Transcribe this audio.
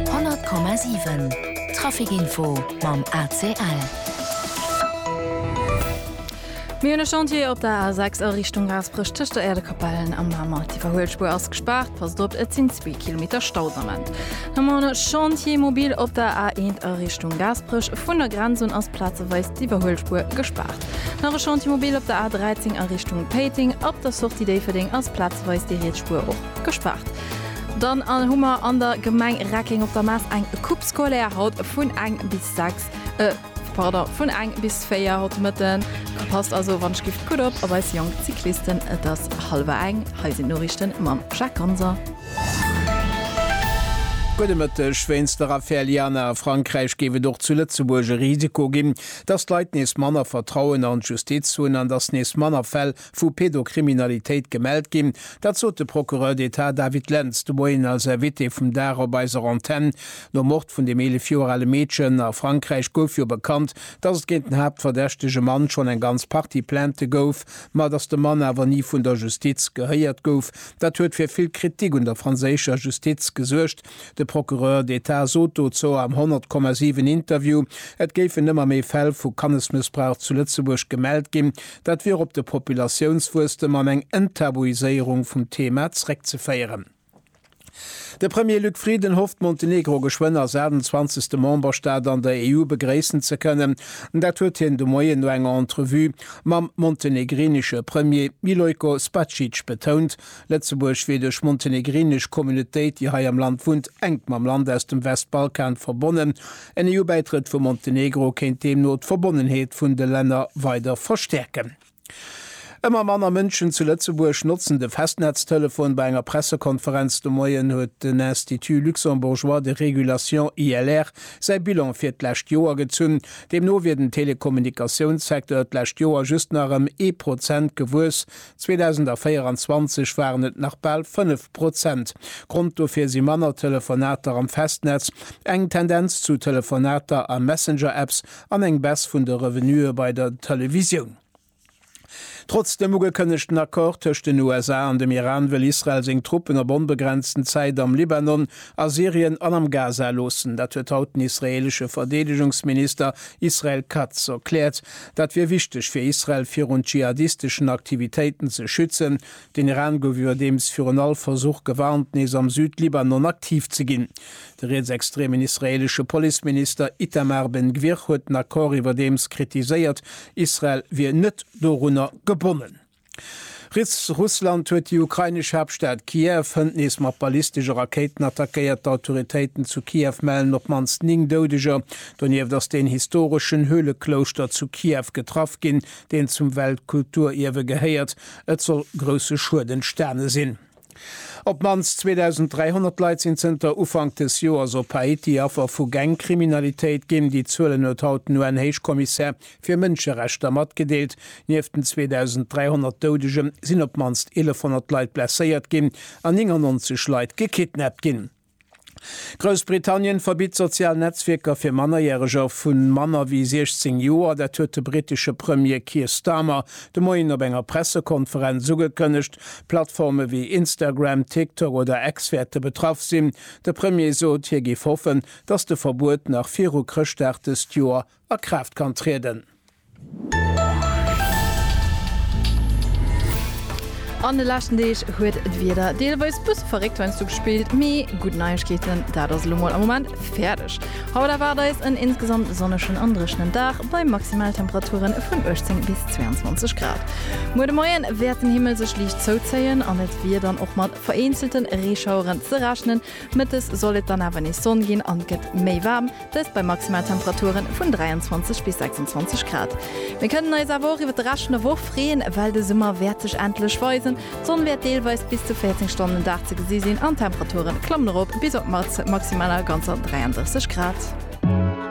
100,7 Trafic Info mam ACL. Mir hunn e Chantier op der A6 a Richtung Gaasperech tëscht der Äerdekapellen a Mamer. D'Iwwerhuelspuer ass gespaart, passt op, et sinn zwee Kilometer Stau de Moment. Dann hu mer e Chantier mobil op der A1 a Richtung Gaasperech. Vun der Grenz un ass plazeweis d'Iwwerhuelspuer gespaart. Nach e Chantier mobil op der A13 a Richtung Péiteng. Ab der Sortie Déifferdeng ass plazeweis déi riets Spuer och gespaart. Dann hu mer an der Gemeng Reckeng op der Mass eng Coupe scolaire haut vun eng bis sechs, pardon, vun eng bis véier haut de Mëtten. Passt also wann ech giff gutt op op eis jonk Cyclisten. Et ass hallwer eng. Hei sinn d'Noriichte mam Jacques Ganser. Gudde Mëtteg. Wéinst der Affär Liana a Frankräich géif et och zu Lëtzebuerg e Risiko ginn, datt d'Leit nees manner Vertrauen an d'Justiz hunn an datt nees manner Fäll vu Pedokriminalitéit gemellt ginn. Dat sot de Procureur d'Etat David Lentz de Moien als Invité vum Dag op eiser Antenn. Nom Mord vun dem 11 Joer ale Meedchen a Frankräich gouf jo bekannt, datt et géint den haaptverdächtege Mann schonn eng ganz Partie Plaintë gouf, ma datt de Mann awer ni vun der Justiz gehéiert gouf. Dat huet fir vill Kritik un der franséischer Justiz gesuergt. De Procureur d'Etat sot dozou am 100,7 Interview, et géifen ëmmer méi Fäll vu Kannesmëssbrauch zu Lëtzebuerg gemellt ginn. Dat wier op de Populatiounswuesstem an eng Enttabuiséierung vum Thema zréckzeféieren. De Premier Luc Frieden hofft, Montenegro geschwënn als 28. Memberstaat an der EU begréissen ze kënnen. Dat huet hien de Moien no enger Entrevue mam montenegrinesche Premier Milojko Spacic betount. Lëtzebuerg wier duerch montenegrinesch Communautéit, déi hei am Land wunnt, enk mam Land aus dem Westbalkan verbonnen. En EU-Bäitrëtt vu Montenegro kéint deemno d'Verbonnenheet vun de Länner weider verstäerken. Ëmmer manner Mënschen zu Lëtzebuerg notzen de Festnetztelefon. Bei enger Pressekonferenz de Moien huet den Institut luxembourgeois de régulation, ILR, säi Bilan fir d'lescht Joer gezunn. Deemno wier den Telekommunikatiounssecteur d'lescht Joer just nach ëm ee Prozent gewuess. 2024 waren et nach bal 5 Prozent. Grond dofir si manner Telefonater am Festnetz, eng Tendenz zu Telefonater a Messenger-Apps an eng Baisse vun de Revenuë bei der Televisioun. Trotz dem ugekënnegten Accord tëscht den USA an dem Iran wëll Israel seng Truppen op onbegrenzten Zäit am Libanon, a Syrien an am Gaza loossen. Dat huet haut den israeelesche Verdeedegungsminister Israel Katz erkläert. Dat wier wichteg fir Israel virun dschihadisteschen Aktivitéiten ze schützen. Den Iran gouf iwwerdeems virun all Versuch gewarnt, nees am Süd-Libanon aktiv ze ginn. De rietsextremen israeelesche Policeminister Itamar Ben Gvir huet den Accord iwwerdeems kritiséiert, Israel wier net dorunner gebonnen. Riets, Russland huet déi ukrainesch Haaptstad Kiew hënt nees mat ballistesche Rakéiten attackéiert. D'Autoritéiten zu Kiew mellen op d'mannst 9 Doudeger. Donieft ass den historeschen Höhleklouschter zu Kiew getraff ginn, deen zum Weltkulturierwe gehéiert. Et soll grousse Schued entstane sinn. Op d'mannst 2.300 Leit sinn zënter Ufank des Joers op Haiti Affer vu Gangkriminalitéit ginn. Déi Zuelen huet haut den UN-Héichkommissär fir Mënscherechter matgedeelt. Nieft den 2.300 Doudegen sinn op d'mannst 1.100 Leit blesséiert ginn an 99 Leit gekidnappt ginn. Groussbritannien verbitt sozial Netzwierker fir Mannerjäreger vu manner wéi 16 Joer. Dat huet de brittesche Premier Keir Starmer de Moien op enger Pressekonferenz ugekënnegt. Plattforme wéi Instagram, TikTok oder X wäerte betraff sinn. De Premier sot, hie géif hoffen, datt de Verbuet nach viru Chrëschtdag dëst Joer a Kraaft kann trieden. An de leschten Deeg huet d'Wieder deelweis bësse verréckt heiansdo gespillt, mee gutt Neiegkeeten, dat ass elo mol am Moment fäerdeg. Haut erwaart eis en insgesamt sonnegen an dréchenen Dag bei Maximaltemperature vun 18 bis 22 Grad. Muer de Moien wäert den Himmel sech liicht zouzéien an et wier dann och mat vereenzelte Reeschaueren ze rechnen. Mëttes soll et dann awer nees Sonn ginn an et gëtt méi waarm, dëst bei Maximaltemperature vun 23 bis 26 Grad. Mir kënnen eis awer och iwwert de Rescht vun der Woch freeën, well de Summer wäert sech endlech weisen. D'Sonn wäert deelweis bis zu 14 Stonnen den Dag ze gesi sinn an d'Temperature klammen erop bis op d'Maximaler ganzer 33 Grad.